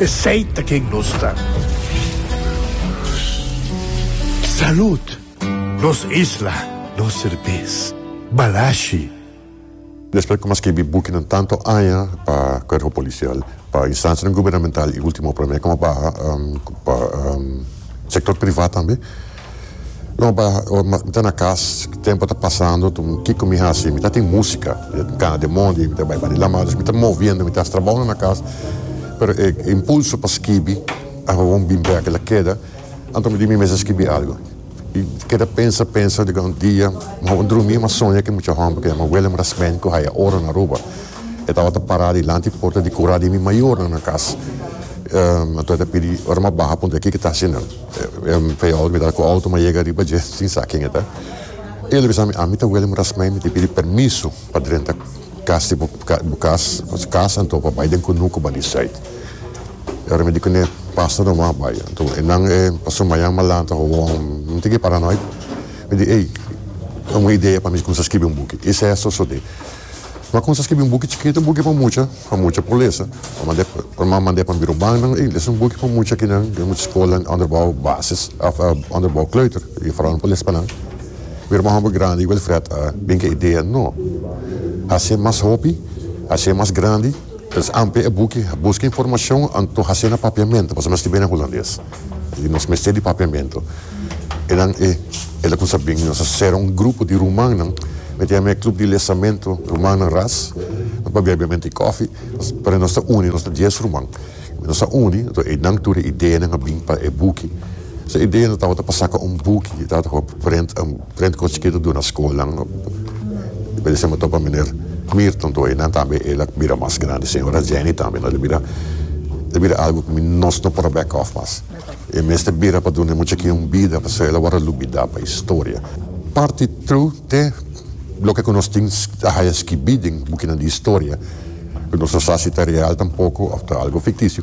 Esey ta ken nos ta. Salud! Nos isla, nos serbes. Balashi. Despues di komanse skibi bukinan tantu aña pa kuerpo polisial, pa instansianan gubernamental i ultimo promé komo baha pa sektor privat tambe, No pa mi ta na kas tempo ta pasando kiko mi hasi mi ta tin musika kana den mondi mi ta bai bani lama dus mi ta moviendo mi ta hasi trabounan na kas pero e impulso pa skibi awor bin bek el a keda anto mi di mi mes a skibi algu y keda pensa pensa riba un dia mi a drumi mi a soña ki mucha homber ke yama Willem Rasmijn ku haya oro na Aruba e tabata para dilanti porta di kura di mi mayornan na kas anto e ta pidi ora mi a baha puntra kiko ta hasi nan. Payal mi ta cu auto ma yega riba dje sin sa ken e ta. E lo bisa mi, ami ta wele murasmei mi tin pidi permiso pa drenta cas di bo cas, nos cas anto pa bay den cunu cu bali site. E ora mi di cune pasa no wak bay. Anto e nan e paso mayan malan ta hoon mi tin ki paranoid. Mi di ey un idea pa mi cuminsa scribi un buki. Ey sa so so de. Lo a cuminsa scribi un buki chikito, un buki pa mucha, pa mucha por lesa. Lo mand'e, lo ma mand'e pa biro bannan y lesa un buki pa mucha aki nan den mucha scola onderbouw basis of onderbouw kleuter y foral nan por les pa nan. Biro bannan homber grandi y Wilfred a bin cu e idea, no, haci'e mas hopi, haci'e mas grandi. Pues amplia e buki. Buska informashon anto hasié na papiamentu pasobra nos tin bini na hulandes i nos mester di papiamentu. E nan e el a kumsa bini. Nos a sera un grupo di rumannan mi ta yama e Club di Lezamentu Rumannan Ras. Nos pabia bia menti kofi pero nos ta uni nos ta dies ruman. Nos a uni, enton einan tur e ideanan a bin pa e buki. Nos a idea no tabata pa saka un buki, e tabata pa prent un prent con chikitu duna skolnan. E por esemel topa meneer Mirton tur einan tambe el a bira mas grandi, señora Jenny tambe. Nos lo bira, ta bira algu cu mi nos no por a back off mas. E mester bira pa duna e muchakinan un bida pasobra el a wòrdu lubidá pa historia. Parti true te loke cu nos tin a haya skibí den bukinan di historia. Ku nos ta sa si ta real tampoko òf ta algu fiktisio.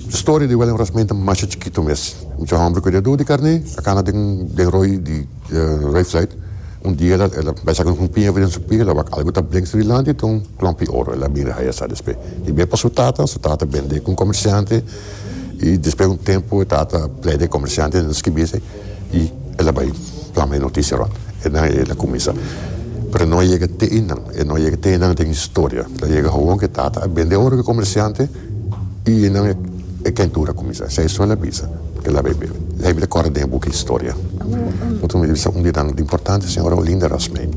Storia di William Rasmijn ta masha chikitu mes. Un cha hòmber ku e dedu di karné a kana den den roi di rei Fluit. Un dia el a bai saka un humpi hèvi den su pia, el a wak algu ta blink suri lanti i ta un klòmpi oro. El a mira haya sa despe i biba pa su tata. Su tata bende ku un komersiante i despe un tempu e tata a plede e komersiante skibi esei. y el a bay plama e noticia rond e nan y el a cuminsa pero no a yega te e nan e no a yega te e nan den historia lo a yega gewoon ke tata a bende oro ke comerciante y e nan e kentura a cuminsa esey so el a bisa ke el a bay bebe esey mi ta corre den e book historia otro mi ta bisa un di nan importante señora Olinda Rasmijn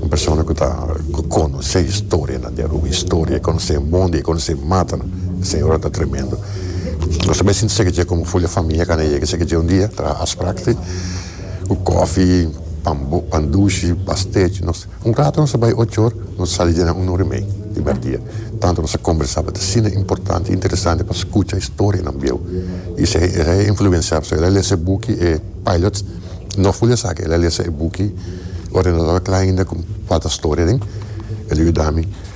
un persona ku ta ku conoce historia nan di Aruba historia e conoce e monde e conoce e matanan e señora ta tremendo. Nos tambe a sinti seke dje komo fulia famia kanda yega seke dje un dia traha Asprachti ku kofi, pan dushi, pasteci. Nos un rato nos a bai ocho or, nos a sali dje nan un ora i mei di merdia. Tantu nos a kombersaba ta asina importanti i interesanti pa skucha historia nan bieu. Isei el a influensiaba so el a lesa e buki e Pilots, no fulia esaki el a lesa e buki ora e no tabata kla ainda ku falta storia den. El a yuda mi.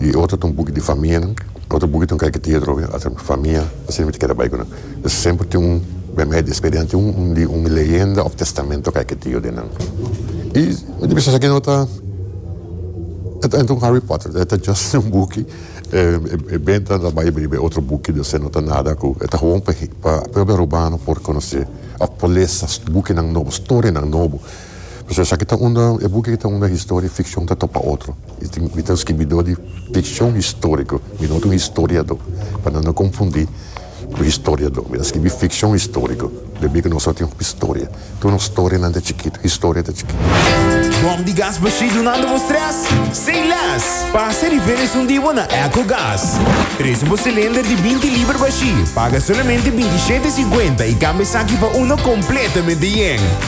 y otro ta un buki di famia nan otro buki ta un karikatira drobe ata famia asina mi ta keda bai ku nan entonces semper tin un bia mi a despedi nan tin un di un leyenda of testamento karikatido den nan y mi ta bisa esaki no ta e ta un Harry Potter e ta just un buki e benta nan ta bai bini be otro buki di esei no ta nada ku e ta hon pa pa propio Arubaano por konosé of por lesa buki nan nobo storia nan nobo. Pasobra esaki ta unda, e buki aki ta unda historia, ficcion ta topa otro. Mi tin, mi ta un scribidor di ficcion historico, mi no ta un historiador, pa nan no confundi cu historiador. Mi ta scribi ficcion historico, pasobra cu nos a tin hopi historia. Tur nos storianan ta chikitu, historia ta chikitu. Bom di gas bashí dunando bo stress sin les. Pasa riba e resun di bo na Ecogas. Presu bo cilinder di binti liber bashí, paga solamente binti shete siguenta i cambia esaki pa uno completamente yen.